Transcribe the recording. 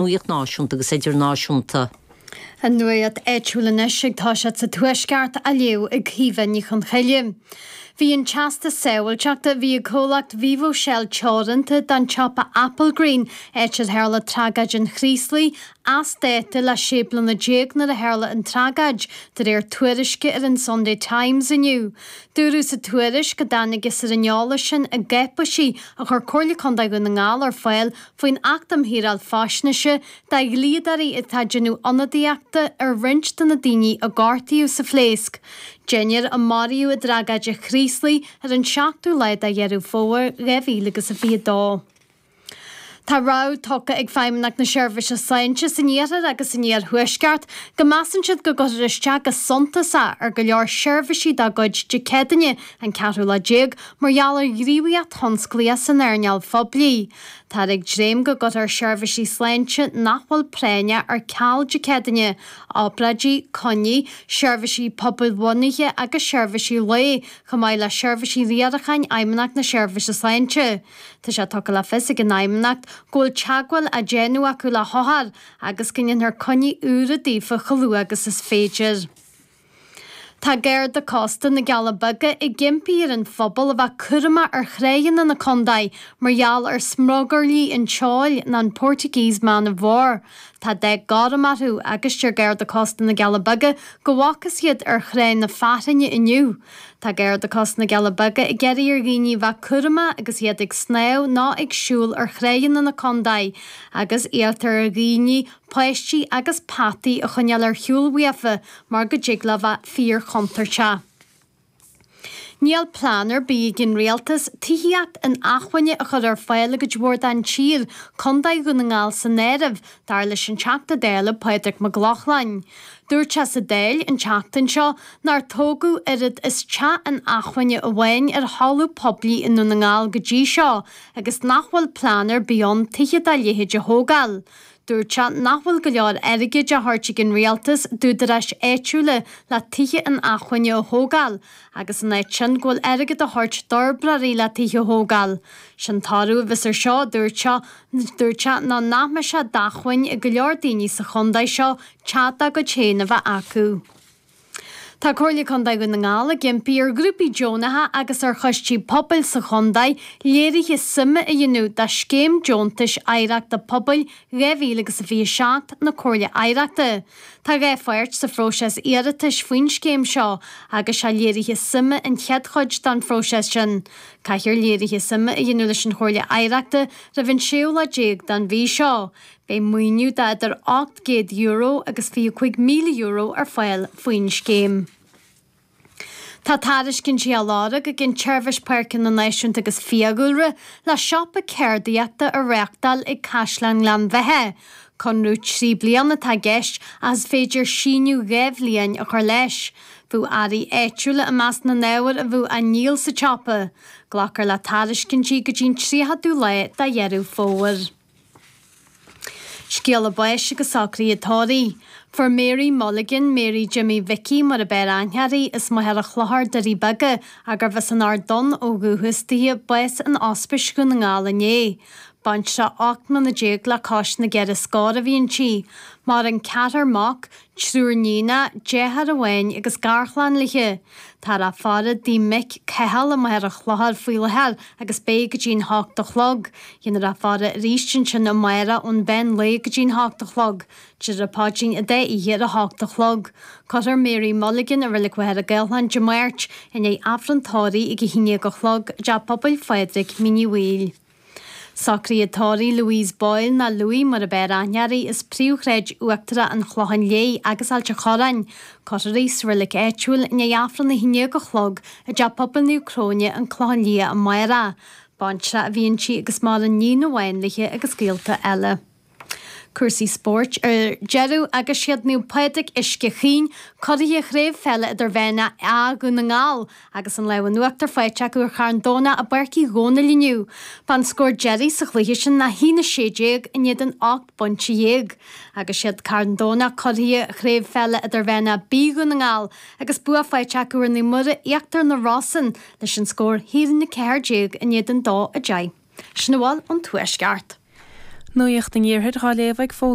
Nuacht náisiúnta agus idirnáisiúnta. An nuacht áitiúil anois ag Tá siad sa Tuaisceart á léamh ag Caoimhe Ní Chonchoille. Bhí an Teastas Sábháilteachta a bhí ag comhlacht Vivo Shell teoranta don tsiopa Applegreen, áit ar tharla tragóid an Chraoslaigh, as dáta le 16 bliana nuair a tharla an tragóid, de réir tuairisce ar an Sunday Times inniu. Dúradh sa tuairisc, a dtáinig as ar an eolas sin i gcáipéisí a chuir Comhairle Contae Dhún na nGall ar fáil, faoin Acht um Shaoráil Faisnéise do dhlíodóirí atá ag déanamh ionadaíochta ar roinnt de na daoine a gortaíodh sa phléasc den deichniúr a maraíodh i dtragóid an Chraoslaigh ar an 7ú lá de Dheireadh Fómhair 2022. Tá rabhadh tugtha ag Feidhmeannacht na Seirbhíse Sláinte san Iarthar agus san Iarthuaisceart go measann siad go gcuirfear isteach go suntasach ar go leor seirbhísí dá gcuid Dé Céadaoine an 14ú lá mar gheall ar ghníomhaíocht thionsclaíoch san earnáil phoiblí. Táthar ag dréim go gcuirfear seirbhísí sláinte nach bhfuil práinneach ar ceal Dé Céadaoin, obráidí, coinní, seirbhísí pobail-bhunaithe agus seirbhísí lae, chomh maith le seirbhísí riaracháin Fheidhmeannacht na Seirbhíse Sláinte. Tá sé tugtha le fios ag an Fheidhmeannacht go bhfuil teagmháil á déanamh acu le hothair agus go ndéanfar coinní úra daofa chomh luath agus is féidir. Tá Garda Cósta na gCealla Beaga ag impí ar an phobal a bheith cúramach ar thránna na contae mar gheall ar smugairlí an tseoil, nó an Portuguese Man of War. Tá dath gorm orthu agus deir Garda Cósta na gCealla Beaga go bhfaca siad iad ar thrá na Fionntrá inniu. Tá Garda Cósta na gCealla Beaga ag iarraidh ar dhaoine a bheith cúramach agus iad ag snámh nó ag siúl ar thránna na contae agus iarrtar ar dhaoine páistí agus peataí a choinneáil ar shiúl uafa mar go dtig leo bheith fíorchontúirteach. Níl plean ar bith ag an rialtas tithíocht inacmhainne a chur ar fáil i gcuid mhór den tír, contae Dhún na nGall san áireamh, dar leis an Teachta Dála Pádraig Mac Lochlainn. Dúirt sé sa Dáil an tseachtain seo nár tógadh oiread is teach inacmhainne amháin ar thalamh poiblí i nDún na nGall go dtí seo agus nach bhfuil plean ar bith ann tithe dá leithéid a thógáil. Dúirt sé nach bhfuil go leor airgid á thabhairt ag an Rialtas d'údaráis áitiúla le tithe inacmhainne a thógáil agus ina áit sin go bhfuil airgead á thabhairt d'fhorbróirí le tithe a thógáil. Sé an toradh a bheas ar seo a dúirt sé. Dúirt sé ná nach mbeidh sé d'acmhainn ag go leor daoine sa chontae seo teach dá gcuid féin a bheith acu. Tá Comhairle Contae Dhún na nGall ag impí ar ghrúpaí deonacha agus ar choistí pobail sa chontae léirithe suime a dhéanamh dá Scéim Deontais Oidhreachta Pobail 2027 na Comhairle Oidhreachta. Tá dhá pháirt sa phróiseas iarratais faoin scéim seo agus sé léirithe suime an chéad chuid den phróiseas sin. Caithfear léirithe suime a dhéanamh leis an Chomhairle Oidhreachta roimh an séú lá déag den mhí seo. Beidh maoiniú de idir €800 agus €25,000 ar fáil faoin scéim. Tá tairiscintí á lorg ag an tSeirbhís Páirceanna Náisiúnta agus Fiadhúlra le siopa ceardaíochta a reáchtáil ag Caisleán Ghleann Bheithe. Conradh trí bliana atá i gceist ach is féidir síneadh dhá bhliain a chur leis. Bheadh earraí áitiúla i measc na n-ábhar a bheadh á ndíol sa tsiopa. Glacfar le tairiscintí go dtí an 30ú lá de Dheireadh Fómhair. Scéala báis agus socraithe tórraimh. Fuair Mary Mulligan, Mary Jimmy Mhicí mar ab fhearr aithne uirthi, as Machaire Chlochair, Doirí Beaga, agus arbh as an Ard Donn ó dhúchas di, bás in Ospís Dhún na nGall inné. Baintreach 18 mbliana le cois na gceithre scór a bhí inti. Maireann ceathrar mac, Triúr níonacha, deartháir amháin agus garchlann léi. Táthar á faire i dtigh a mic Cathal i Machaire Chlochair faoi láthair agus beidh go dtí an hocht a chlog. Dhéanfar a faire arís ansin amárach ón mheán lae go dtí an hocht a chlog. Déarfar an Paidrín an dá oíche ar a hocht a chlog. Cuirfear Mary Mulligan i Reilig Mhachaire Gathlán Dé Máirt i ndiaidh Aifreann Tórraimh ag a haon déag a chlog i dTeach Pobail Phádraig, Mín Uí Bhaoill. Socruithe tórraimh Louise Boyle, nó Louie mar ab fhearr aithne uirthi, as Príomhshráid Uachtarach an Chlocháin Léith agus Ailt a' Chorráin, cuirfear í sa reilig áitiúil i ndiaidh Aifreann a 11 a chlog i dTeach Pobail Naomh Cróine, An Clochán Liath, amárach. Baintreach a bhí inti agus maireann níon amháin léi agus gaolta eile. Cúrsaí spóirt ar deireadh agus siad Naomh Pádraig, Uisce Chaoin, curaithe craobh peile idirmheánach A, Dhún na nGall, agus an lámh in uachtar faighte acu ar Charn Domhnach i bPáirc Uí Dhónaill inniu. Ba an scór deiridh sa chluiche sin ná a haon 16 in éadan 18 bpointe agus siad Carn Domhnach curaithe craobh peile idirmheánach B, Dhún na nGall, agus bua faighte acu ar Naomh Muire, Íochtar na Rosann, leis an scór a haon 14 in éadan 12. Sin a bhfuil ón Tuaisceart. Nuacht an Iarthair dhá léamh ag foghlaim.